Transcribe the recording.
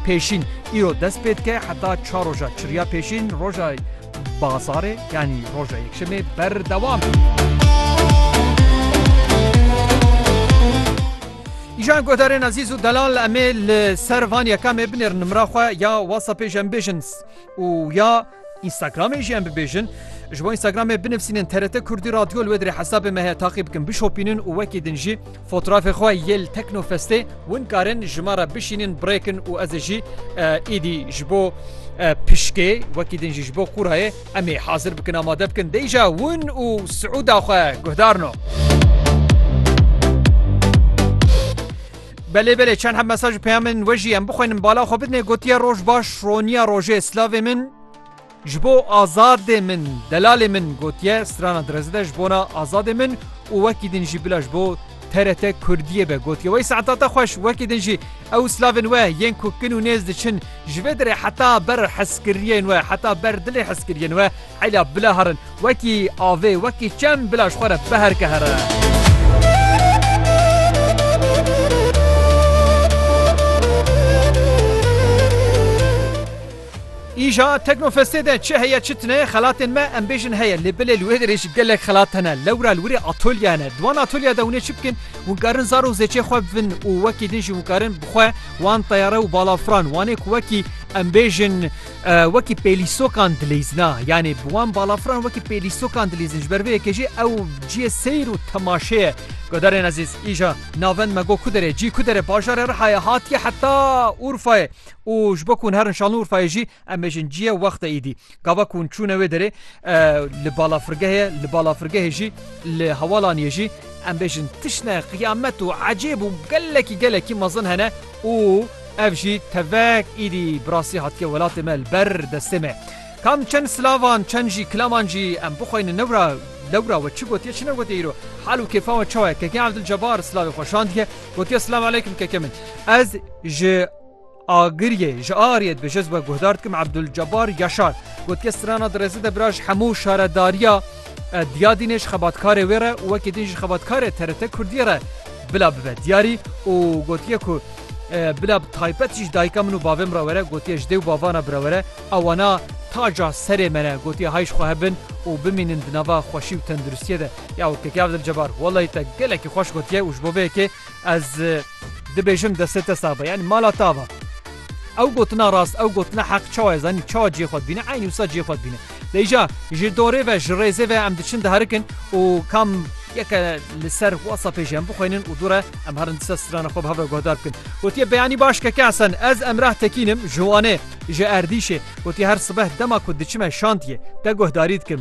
Pêşîn, îro dest pê dike heta çar roja çirya pêşîn roja bazarê yanî roja yekşemê berdewam e. Îjan guhdarên ezîz û delal em ê li ser van yekamê binêrin nimra xwe ya whatsappê ji em bêjin û ya. Instagramê jî em bibêjin. Ji bo Instagramê binivîsînin TRT Kurdî Radyo li wê dirê hesabê me heye taqî bikin bişopînin û wekî din jî fotrafê xwe yê li Teknofestê Hûn karin ji me re bişînin birêkin û ez ê jî êdî ji bo pişkê wekî din jî ji bo qûrayê em ê hazir bikin amade bikin deyja hûn û siûda xwe guhdarno. Belê belê çend heb mesaj û peyamên we jî em bixwînin bala xwe bidinê gotiye roj baş roniya rojê slavê min ji bo azadê min delalê min gotiye strana direze de ji bona azadê min û wekî din jî bila ji bo TRT kurdiyê be gotiye wey saeta te xweş wekî din jî ew slavên we yên ku kin û nêz diçin ji vê dirê heta ber heskiriyên we heta ber dilê heskiriyên we Ela bila herin wekî avê wekî çem bila ji xwe re biherike here. Îja Teknofestê de çi heye çi tune xelatên me em bêjin heye lê bilê li wê derê jî gelek xelat hene. Lewra li wîrê atolye hene. Di wan atolye de hûn ê çi bikin? Hûn karin zar û zêçê xwe bivin û wekî din jî hûn karin bi xwe wan teyare û balafran wanê ku wekî em bêjin Wekî pêlîstokan dileyzina yanî bi wan balafran wekî pêlîstokan dileyzin ji ber vê yekê jî ew ciyê seyr û temaşê ye. Guhdarên ezîz îja navend me got ku derê cî ku derê bajarê Rihayê hatiye heta Urfayê û ji bo ku hûn herin şanli Urfayê jî em bêjin ciyê wextê îdî. Gava ku hûn çûne wê derê li balafirgehê li balafirgehê jî li hewalaniyê jî em bêjin tiştên qiyamet û ecêb û gelekî gelekî mezin hene. Û ev jî tevek îdî bi rastî hatiye welatê me li ber destê me. Kam çend silavan, çend jî kilaman jî em bixweynin newra lewra we çi gotiye çi negotiye îro hal û kêfa we çawa ye. Keke Evdil Cebar silavê xwe şandiye gotiye Silav Eleykum keke min. Ez ji Agiriyê ji Ariyê dibêje ez we guhdar dikim Evdil Cebar Yaşar gotiye strana di rêzide bira ji hemû şaredariya E, diya din ê ji xebatkarê wê re û wekî din ji xebatkarê TRT Kurdiyê re bila bibe diyarî û gotiye ku e, bila bi taybet jî ji dayika min û bavê min re were, gotiye ji dê û bavana bi re were, ew wana taca serê me ne, gotiye hay ji xwe hebin û bimînin di nava xweşî û tenduristiyê de. Ya Wekîl Abdulcebar, wellahî te gelekî xweş gotiye û ji bo vê yekê Ez dibêjim destê te sax be yani mala ta va. Ew gotina rast ew gotina heq çawa ez zanî çawa cihê xwe dibîne eynî wisa cihê xwe dibîne. Leyja ji dorê ve ji rêzê ve em diçin diherikin û kam yeke li ser WhatsAppê jî em bixwînin û dûre em herin disa strana xwe bi hev re guhdar bikin. Gotiye beyanî baş keke Hesen ez Emrah Tekîn im ji Wanê ji Erdîşê gotiye her sibeh dema ku diçime şantiyê te guhdarî dikim.